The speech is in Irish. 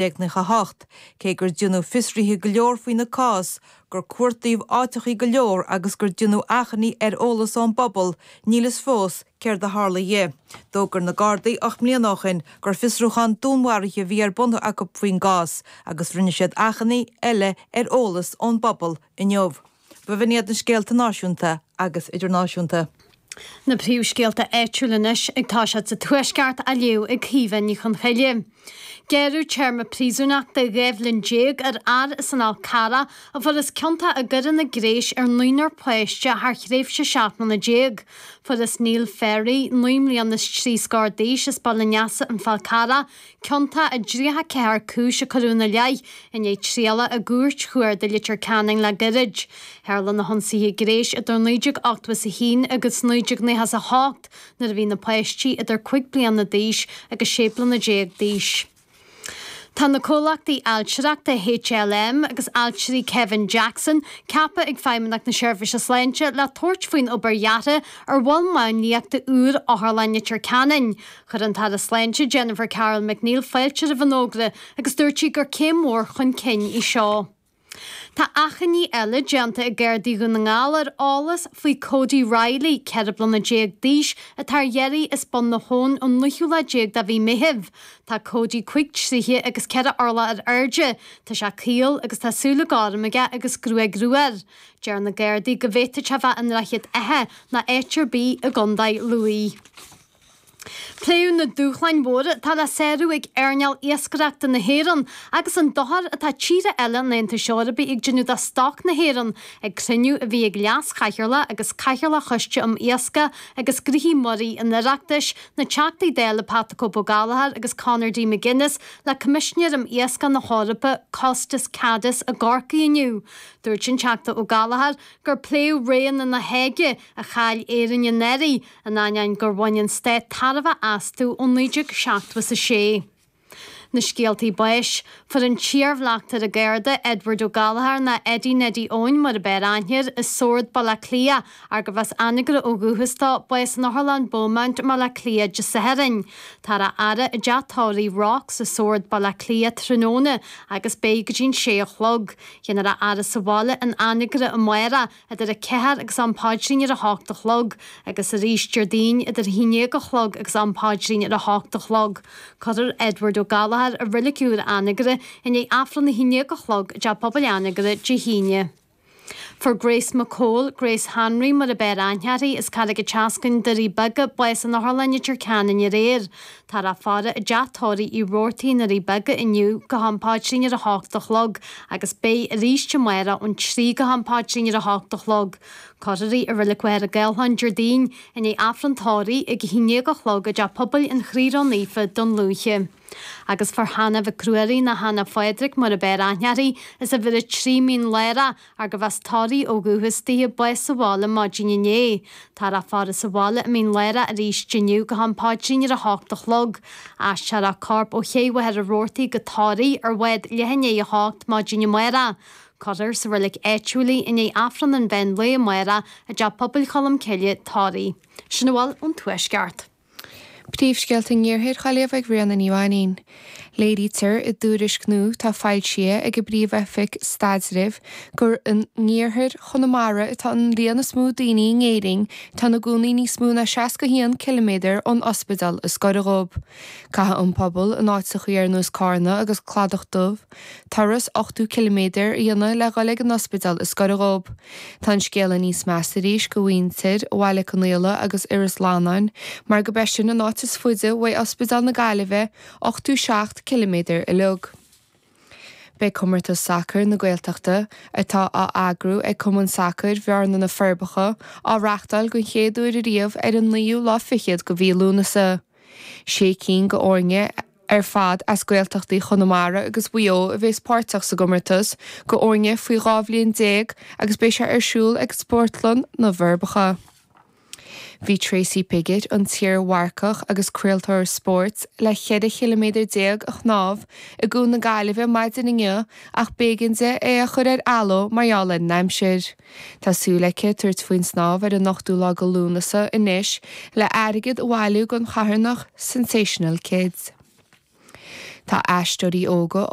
Nócha 8, cé gur deineadh fiosruithe go leor faoina cás, gur cuartaíodh áiteachaí go leor agus gur deineadh achainí ar eolas ón bpobal, níl a fhios fós céard a tharla dhe. D'fhógair na Gardaí ocht mbliana ó shin gur fiosrúchán dúnmharaithe a bhí ar bun acu faoin gcás agus rinne siad achainí eile ar eolas ón bpobal inniu. B'in iad na scéalta náisiúnta agus idirnáisiúnta. Na príomhscéalta áitiúil anois ag Tús Áite sa Tuaisceart á léamh ag Caoimhe Ní Chonghaile. Gearradh téarma príosúnachta dhá bhliain déag ar fhear as an Fhal Carrach a fuarthas ciontach i gcoireanna gnéis ar naonúr páiste thar thréimhse seacht mbliana déag. Fuarthas Neil Ferry, naoi mbliana is trí scór d'aois as Baile Neasa, an Fal Carrach, ciontach i dtríocha ceathair cúis a cuireadh ina leith i ndiaidh trialach i gCúirt Chuarda Leitir Ceanainn le gairid. Tharla na hionsaithe gnéis idir 1981 agus 1998 nuair a bhí na páistí idir cúig bliana d'aois agus sé bliana déag d'aois. Tá na comhlachtaí ailtireachta HLM agus ailtirí Kevin Jackson ceaptha ag Feidhmeannacht na Seirbhíse Sláinte le tabhairt faoin obair dheartha ar mhol máinliachta úr Otharlann Leitir Ceanainn. Chuir an tAire Sláinte Jennifer Carroll MacNeill fáilte roimh an fhógra agus dúirt sí gur céim mhór chun cinn í seo. Tá achainí eile déanta ag Gardaí Dhún na nGall ar eolas faoi Cody Riley, 14 bliana d'aois, atá ar iarraidh as Bun an Phobail ón naoú lá déag de mhí Meithimh. Tá Cody cúig troighe agus ceithre orlach ar airde, tá sé caol agus tá súile gorma aige agus gruaig rua air. Deir na Gardaí go bhféadfadh sé bheith i nDroichead Átha ná áit ar bith i gContae Lú. Pléadh na dúshláin mhóra atá le sárú ag earnáil iascaireachta na hÉireann agus an dochar atá tíortha eile an Aontais Eorpaigh ag déanamh do stoc na hÉireann ag cruinniú a bhí ag Leas-Chathaoirleach agus Cathaoirleach Choiste um Iascaigh agus Gnoithí Muirí an Oireachtais, na Teachtaí Dála Pat the Cope Ó Gallchóir agus Conor D McGuinness le Coimisinéir um Iascaigh na hEorpa, Costas Kadis i gCorcaigh inniu. Dúirt an Teachta Ó Gallchóir gur pléadh Roghanna na Háige a chaill Éirinn in éirí, in ainneoin gur bhain an stát tairbhe astu ó 1976. Na scéaltaí báis, fuair an t-iarbhleachtaire Garda Edward Ó Gallchóir, ná Eddie Neddy Eoin mar ab fhearr aithne air, i Sord, Baile Átha Cliath, arbh as Anagaire ó dhúchas dó, bás in Otharlann Beaumont, Baile Átha Cliath, Dé Sathairn. Tá a fhaire i dteach tórraimh Rocks i Sord, Baile Átha Cliath, tráthnóna agus beidh go dtí an sé a chlog. Déanfar a fhaire sa bhaile in Anagaire amárach. idir a ceathair agus am paidrín ar a hocht a chlog, agus arís Déardaoin idir a haon déag a chlog agus am paidrín ar a hocht a chlog. Cuirfear Edward Ó Gallchóir i reilig úr Anagaire i ndiaidh Aifreann a haon déag a chlog i dTeach Pobail Anagaire Dé hAoine. Fuair Grace McCole, Grace Hanraí mar ab fhearr aithne uirthi, as Carraig an tSeascainn, Doirí Beaga, bás in Otharlann Leitir Ceanainn aréir. Táthar á faire i dTeach Tórraimh Uí Robhartaigh na Doirí Beaga inniu go ham paidrín ar a h-ocht a chlog agus beidh aríst amárach ón trí go ham paidrín ar a h-ocht a chlog. Cuirfear í i Reilig Mhachaire Gathlán Déardaoin i ndiaidh Aifreann Tórraimh ag a h-aon déag a chlog i dteach pobail an Chroí Ró Naofa, Dún Lúiche. Agus fuair Hannah Mhic Ruairí nó Hannah Phádraig mar ab fhearr aithne uirthi as uimhir a trí Mín Lárach ach gurbh as Toraigh ó dhúchas dithe bás sa bhaile maidin inné. Táthar á faire sa bhaile i Mín Lárach aríst inniu go ham paidrín ar a hocht a chlog. Aistreofar a corp ó Ché Mhachaire Rabhartaigh go Toraigh ar bhád leath i ndiaidh a hocht maidin amárach. Cuirfear sa reilig áitiúil í i ndiaidh Aifreann an Mheán Lae amárach i dTeach Pobail Cholm Cille, Toraigh. Sin a bhfuil ón Tuaisceart. Príomhscéalta an Iarthair dhá léamh ag Ríona Ní Mhainín. Léirítear i dtuairisc nua atá foilsithe ag an bPríomh-Oifig Staidrimh gur in Iarthar Chonamara atá an líon is mó daoine in Éirinn atá ina gcónaí níos mó ná 61 ciliméadar ón ospidéal is gaire dhóibh. Caithfidh an pobal in áiteachaí ar nós Carna agus Cladach Dubh, Turas ochtú ciliméadair a dhéanamh le dhul ag an ospidéal is goire dhób. Tá an scéala níos measa arís go mhuintir Bhaile Conaola agus Iorras Fhlannáin mar gurb é sin an áit is fuide uaidh Ospidéal na Gaillimhe, ochtú seacht ciliméadair uilig. Beidh Comórtas Sacair na Gaeltachta, atá á eagrú ag Cumann Sacair Bhearna Na Forbacha, á reachtáil den chéad uair ariamh ar an naoú lá fichead go mhí Lúnasa. Sé cinn go fhoirne ar fad as Gaeltachtaí Chonamara agus Mhaigh Eo a bhéas páirteach sa gcomórtas, go fhoirne faoi dhá bhliain déag agus beidh sé ar siúl ag Sportlann na bhForbacha. Bhí Tracy Piggott, an t-iar-mharcach agus craoltóir spóirt le cheithre chiliméadar déag a shnámh i gCuan na Gaillimhe maidin inniu ach b'éigean di é a chur ar athló mar gheall ar an aimsir. Tá súil aici tabhairt faoin snámh ar an ochtú lá go Lúnasa anois le airgead a bhailiú don charthanacht Sensational Kids. Tá aisteoirí óga